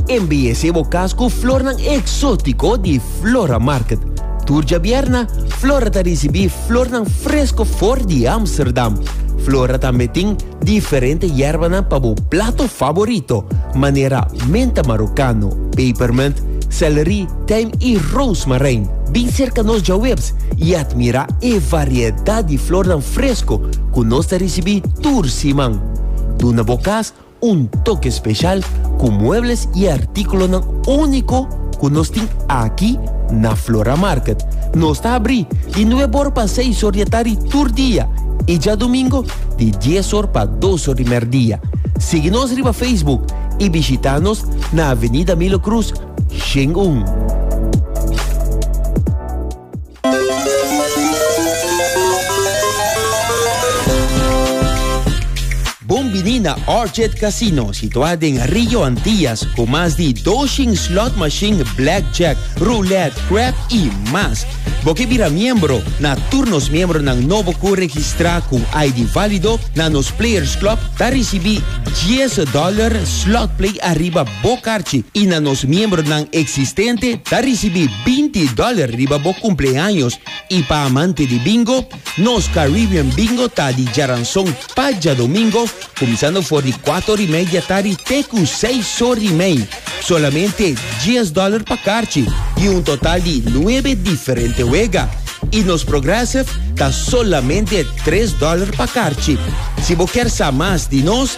Embellece bo cas cu flornan exótico di Flora Market. Tur djabierna, Flora ta ricibi flornan fresco for di Amsterdam. Flora tambe tin diferente yerbanan pa bo plato favorito, manera menta marocano, pepermint, celery, tijm y rozemarijn. Bin cerca nos djawebs y admira e variedad di flornan fresco cu nos ta ricibi tur siman. Duna bo cas Un toke speshal ku muebles i artíkulonan úniko ku nos tin aki na Flora Market. Nos ta abrí di nueb or pa seis or di atari tur dia i djadumingo di dies or pa dos or di mèrdia. Sigui nos riba Facebook i bishitá nos na Avenida Milo Cruz, Shin un. Bon bini na Orchid Casino, situá den Rio Antillas, ku mas di doshin slot machine, blackjack, roulette, crap i mas. Bo ke bira miembro na tur nos miembronan nobo ku registrá ku ID válido na nos Players Club ta risibí 10 dòler slot play ariba bo karchi i na nos miembronan eksistente ta risibí binti dòler riba bo kumpleaños i pa amante di bingo, nos Caribbean Bingo ta di djaranson pa djadomingo kuminsando for di kuater ora i media tardi te ku seis ora i mei. Solamente dies dòler pa karchi i un total di nuebe diferente wega. I nos Progressive ta solamente tres dòler pa karchi. Si bo kier sa mas di nos.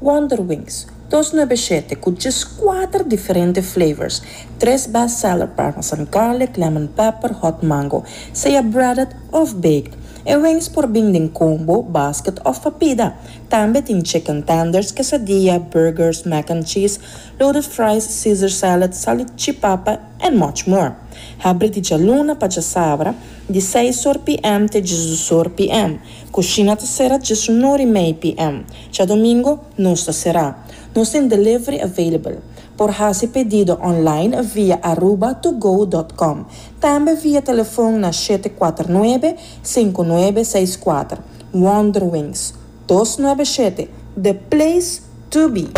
Wonder Wings, dos nuebe shete cu djes cuater diferente flavors, tres best seller parmesan garlic, lemon pepper, hot mango, sea breaded of baked. E wings por bin den combo, basket of pa pida. Tambe tin chicken tenders, quesadilla, burgers, mac and cheese, loaded fries, caesar salad, salichipapa and much more. Habri di djaluna pa djasabra, di seis or PM te djesdusor PM. Kushina ta sera djesunor i mei PM. Djadomingo nos ta sera. Nos tin delivery available. Por hasi pedido online via aruba to go dot com. Tambe via telefon na shete kuater nuebe, sinku nuebe seis kuater. Wonderwings. Dos nuebe shete, the place to be!